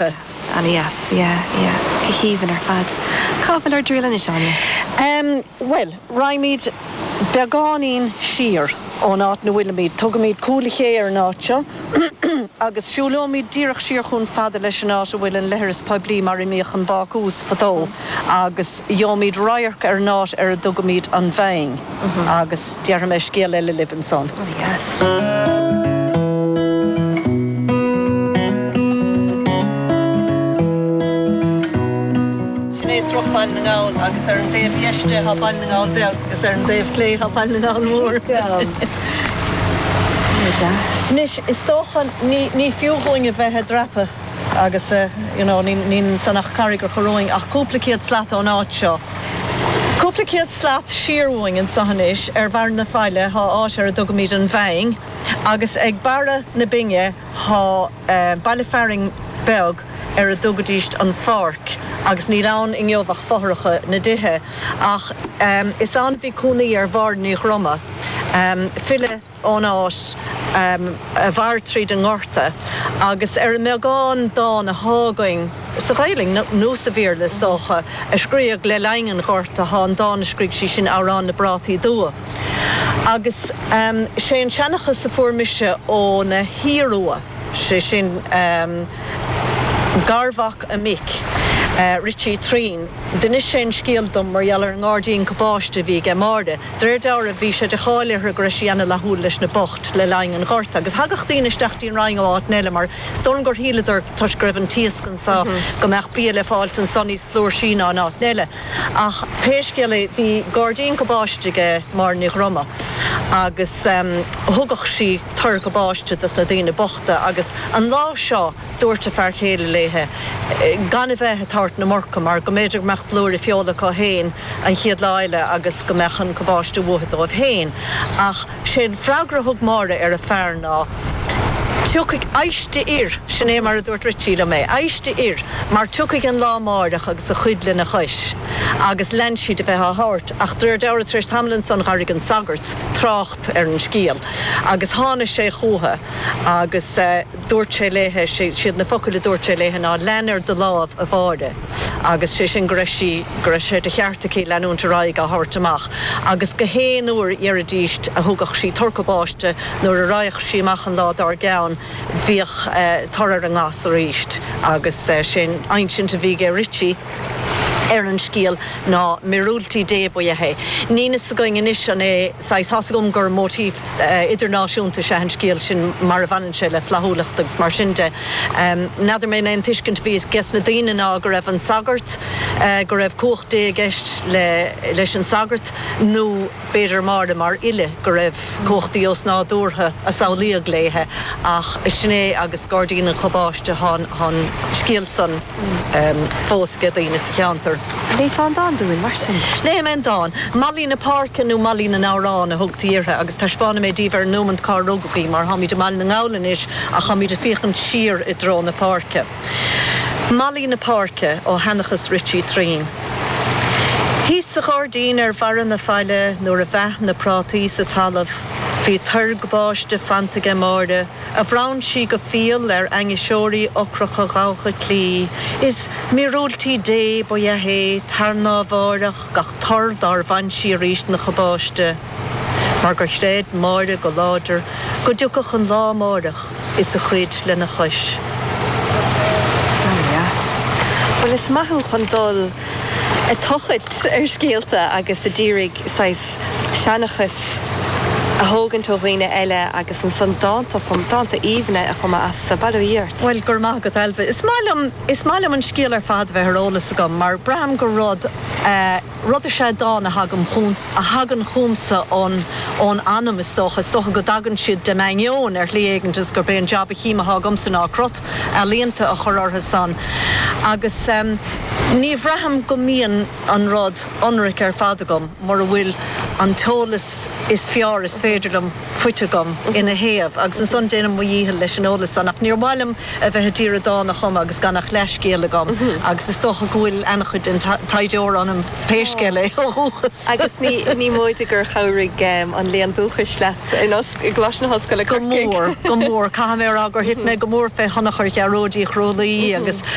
That's Annie Yes yeah yeah go haoibhinn ar fad. Cá bhfuil ár dtriail anois Áine? Em bhuel raghaimid beagáinín siar ón áit ina bhfuilimid, tugaimid Cúil a Ché ar an áit seo agus siúlóimid díreach siar chomh fada leis an áit a bhfuil an leithreas poiblí mar a mbíodh an bácús fadó agus gheobhaimid radharc ar an áit ar a dtugaimid An Bhinn. agus déarfaidh mé scéal eile libh ansan. Sin é Sruth Bhaile na nGall agus ar an dtaobh dheis de tá Baile na nGall Beag agus ar an dtaobh clé tá Baile na nGall Mór. Anois, is dócha ní fiú dhúinn a bheith ag dreapadh agus, you know, níl ansan ach carraig ar chor romhainn ach cúpla céad slat ón áit seo. Cúpla céad slat siar uainn anso anois, ar bharr na faille, thá áit ar a dtugaimid an Bhinn, agus ag barra na binne thá baile fearainn beag ar a dtugaidís an Pháirc, agus níl ann inniu ach fothracha na dtithe. Ach is ann a bhí cónaí ar Mháire Ní Dhroma, file. ón áit a mhair tríd an nGorta agus ar an mbeagán dán athá againn sa Ghaelainn, nó sa Bhéarla is dócha, a scríodh le linn an Ghorta, thá an dán a scrígh sí sin Amhrán na bPrátaí Dubha agus sé an seanchas a fuair mise óna hiarua, sé sin garmhac a mic, Richie Turraoin, d'inis sé an scéal dom mar gheall ar an ngairdín cabáiste a bhí aige Máire. De réir dealraimh, bhí sé de cháil uirthi go raibh sí ana-fhlaithiúil leis na boicht le linn an Ghorta, agus thagadh daoine isteach dtí an Rinn ó áiteanna eile mar is dóigh liom gur shíleadar, toisc go raibh an t-iasc anso, go mbeadh bia le fáilt anso níos flúirsí ná in áiteanna eile. Ach pé scéal é, bhí gairdín cabáiste aige Máire Ní Dhroma, agus thugadh sí tor cabáiste dos na daoine bochta, agus an lá seo, Dúirt a fear céile léithe gan a bheith ag tabhairt na murca mar go mb'fhéidir go mbeadh blúire feola acu féin an chéad lá eile agus go mbeadh an cabáiste uathu dóibh féin. Ach sé'n freagra a thug Máire ar a fear ná, Tiocfaidh, éist a fhir, sin é mar a dúirt Ritchie liom é, éist a fhir, mar tiocfaidh an lá amáireach agus a chuid lena chois. Agus lean sí de bheith á thabhairt. Ach d'réir deallra tar éis tamaill ansan dh'airigh an sagart trácht ar an scéal agus tháinigh sé chúithi agus. dúirt sé léithe, siad na focail a dúirt sé léithe ná lean ar do láimh a Mháire agus sé sin go raibh sí, go raibh sé de cheart aici leanúint ar aghaidh á thabhairt amach agus gach aon uair dheiridís a thugadh sí tor cabáiste nuair a raghadh sí amach an lá dár gceann bhíodh tor ar an ngas arís agus sé'n insint a bhí aige Richie ar an scéal ná míorúiltí Dé ba ea é. Níl fhios againn anois an é saghas, thá 's agam gur motif. idirnáisiúnta is ea an scéal sin mar a bhaineann sé le flaithiúlacht agus mar sin de. N'fheadar mé an é an tuiscint a bhí ages na daoine ná go raibh an sagart, go raibh cumhacht Dé i gceist leis an sagart, nó b'fhéidir Máire mar fhile, go raibh cumhacht éigin osnádúrtha a samhlaíodh léithe, ach sin é agus Gairdín an Chabáiste, tá an scéal san. fós ag daoine sa cheantar. Léigh fán dán dúinn, mar sin. Léifidh mé an dán. Mallaí na Páirce nó Mallaí na nAmhrán a thugtaí uirthi agus taispeánfaidh mé daoibh é ar an nóimeant cár rugadh í, mar táimid i mBaile na nGall anois ach táimid ag féachaint siar i dtreo na páirce. Mallaí na Páirce, ó Sheanchas Richie Traín. Thíos sa ghairdín ar bharra na faille nuair a mheath na prátaí sa talamh bhí tor gabáiste plantaithe aige Máire, a bhronn sí go fial ar ainniseoirí ocracha Chorca Dhuibhne, is míorúiltí Dé ba ea é, tarnábháireach gach tor dár bhain sí arís ina chabáiste, mar gur chreid Máire go láidir go dtiocfadh an lá amárach is a chuid lena chois. Grá mo chroí leat. Bhuel, is maith thú chun dul i dtochailt ar scéalta agus a dírigh saghas seanchas a thógaint ó dhaoine eile agus ansan dánta a chum, dánta aoibhne a chumadh astu. Bail ó Dhia ort. Bhuel, go raibh maith agat, Ailbhe. Is maith liom, is maith liom an scéal ar fad a bheith ar eolas agam mar braithim gur rud eh, rud is ea dán a thagaim chugam, a thagann chugamsa ón, ón anam is dócha, is dócha go dtagann siad dem ainneoin ar shlí éigin agus gurb é an jab a chím atá agamsa ná crot ealaíonta a chur orthu san agus em ní bhraithim go mbíonn an rud ionraic ar fad agam mura bhfuil an t-eolas is fearr is féidir liom fachta agam ina thaobh, agus ansan déanaim mo dhícheall leis an eolas san, ach níor mhaith liom a bheith a d'iarraidh dán a chumadh agus gan ach leathscéal agam, agus is dócha go bhfuil ana-chuid den taighdeoir ionam, pé scéal é, ó dhúchas. Agus is dócha gur chabhraigh an léann dúchais leat i gColáiste na hOllscoile, Corcaigh? Go mór, go mór. Caithfidh mé a rá gur thit mé go mór fé thionchar Ghearóid Uí Chrualaoich agus.